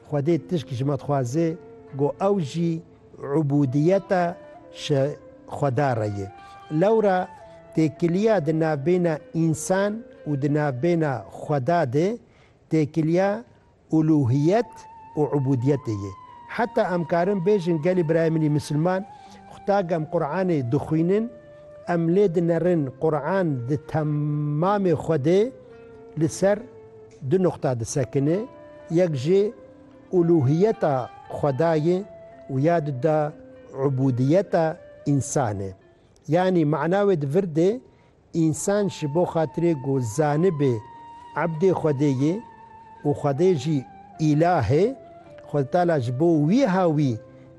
Xwedê tişk ji me dixwaze ku ew jî ubûdiyeta ji Xweda re ye. Lewra têkiliya di navbêna însan û di navbêna Xweda de têkiliya uluhiyet û ubûdiyetê ye. Heta em karin bêjin gelê birayê min ê misilman, Xwedagê em Quranê dixwînin, em lê dinerin Quran di temamê xwe de li ser Du nuqta disekine, yek jî ulûhiyeta Xwedayê û ya di de ubûdiyeta însan e. Yanî mana wê di vir de însan ji bo xatirê ku zanibê ebdê Xwedê ye û Xwedê jî îlah e, Xweditala ji bo wîha wî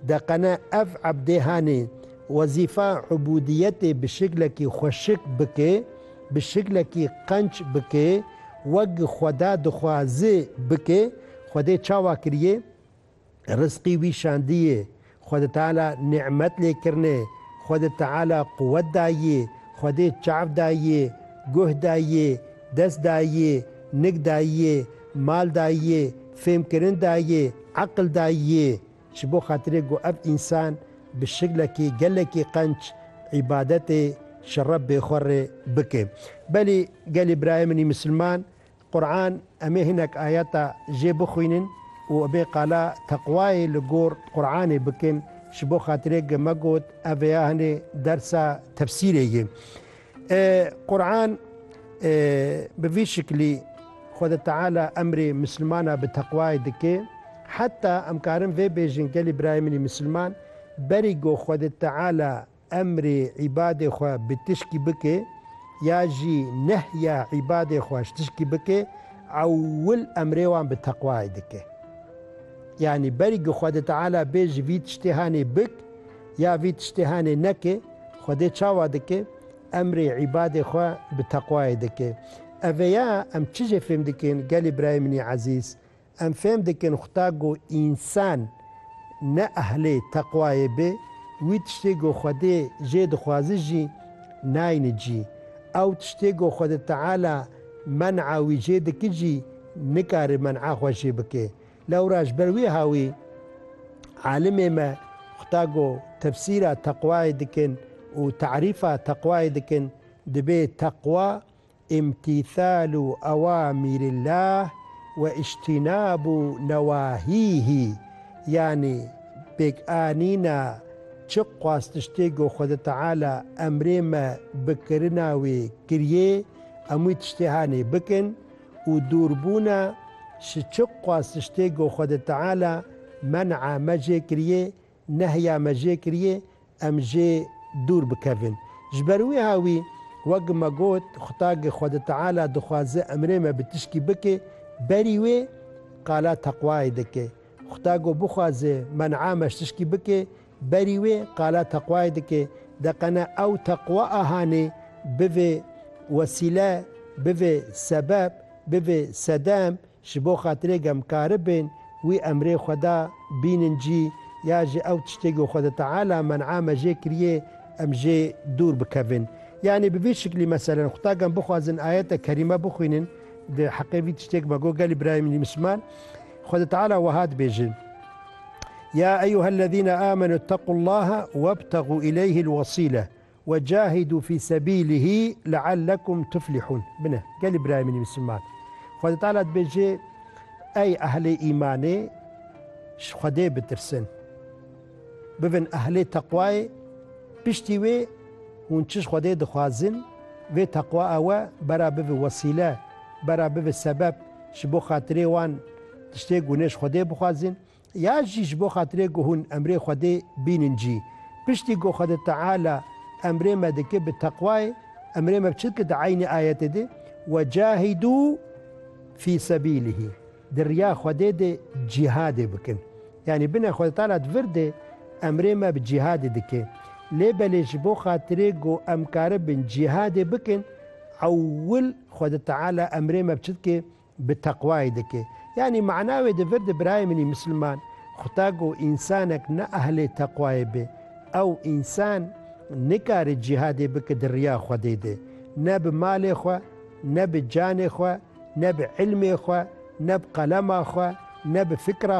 deqene ev ebdê hanê wezîfa ubûdiyetê bi şiklekî xweşik bike, bi şiklekî qenç bike, wek Xweda dixwaze bike, Xwedê çawa kiriye? Rizqî wî şandiye, Xwedi Teala nîmet lê kirine, Xwedi Teala quwet daye, Xwedê çav daye, guh daye, dest daye, nik daye, mal daye, fêmkirin daye, eqil daye. Ji bo xatirê ku ev însan bi şiklekî gelekî qenc îbadetê ji Rebbê xwe rê bike. Belê gelê birayê min ê misilman, Quran em ê hinek ayeta jê bixwînin û em ê qala teqwayê li gor Quranê bikin, ji bo xatirê ku me got ev vêya hinê dersa tefsîrê ye. Quran bi vî şiklî Xweda Teala emrê misilmana bi teqwayê dike. Heta em karin vê bêjin gelê birayê min ê misilman berî ku Xweda Teala emrê îbadê xwe bi tişkî bike ya jî nehya îbadê xwe ji tişkî bike ewil emrê wan bi teqwayê dike. Yanî berî ku Xweda Teala bê ji vî tiştê hanê bik, Ya vî tiştê henê neke, Xwedê çawa dike? Emrê îbadê xwe bi teqwayê dike. Ev e ya em çi jê fêm dikin gelê birayê min ê ezîz? Em fêm dikin Xuda ku însan ne ehlê teqwayê be, wî tiştê ku Xwedê jê dixwaze jî nayne cî. Ew tiştê ku Xwedê Teala men'a wî jê dike jî nikare men'a xwe jê bike. Lewra ji ber wî ha wî alimê me xuta go tefsîra teqwayê dikin û terîfa teqwayê dikin dibê teqwa îmtîthalu ewamîrillah we îjtînabu newahîhî yanî pêk anîna çi xwastiştê go Xwede Teala emrê me bikirina wê kiriyê emûî tiştê hanê bikin, û dûr bûn e, ji çi qasiştê ku Xwedê Teala men'a me jê kiriyê, nehya me jê kiriyê, em jê dûr bikevin. Ji ber wiha wî, wek me got, Xwedagê Xwedê Teala dixwaze emrê me bi tişkî bike, berî wê qala teqwayê dike. Xweda ku bixwaze men'a me ji tişkî bike, Berî wê qala teqwayê dike, deqene ew teqwa a hanê bivê wesîle, bivê sebeb, bivê sedem ji bo xatirê gemkaribin wî emrê xwe da bînin cî ya ji ew tiştê ku Xweda Teala men'a me jê kiriyê em jê dûr bikevin. Yanî bi vî şiklî meselen qutagan bixwazin ayete kerîme bixwînin di heqê vî tiştê ku me got gelê birayê min misliman Xweda Teala weha dibêjin. Ya eyyuhellezîne âmenû ittaqullâhe webtegû ileyhil wesîle ve cahidû fî sebîlihî leallekum tuflihûn. Bine, gelê birayê min misliman. Xwedê Teala dibêje, Ey ehlê îmanê, ji Xwedê bitirsin. Bibin ehlê teqwayê. Piştî wê hûn çi ji Xwedê dixwazin, vê teqwa ew e bera bibe wesîle, bera bibe sebeb ji bo xatirê wan Tiştê ku hûn ji Xwedê bixwazin ya jî ji bo xatirê ku hûn emrê Xwedê bînin cî. Piştî ku Xwede Teala emrê me dike bi teqwayê, emrê me bi çi dike di eynî ayetê de, Wecahidû fî sebîlîhî, di riya Xwedê de cîhadê bikin. Yanî bine Xwede Teala di vir de emrê me bi cîhadê dike. Lê belê ji bo xatirê ku em karibin cîhadê bikin, ewil Xwede Teala emrê me bi çi dike? bi teqwayê dike. Yanî mana wê di vir de birayê min ê misliman, xuta ku însanek ne ehlê teqwayê be, ew însan nikare cîhadê bike di riya Xwedê de, ne bi malê xwe, ne bi canê xwe, ne bi îlmê xwe, ne bi qelema xwe, ne bi fikra,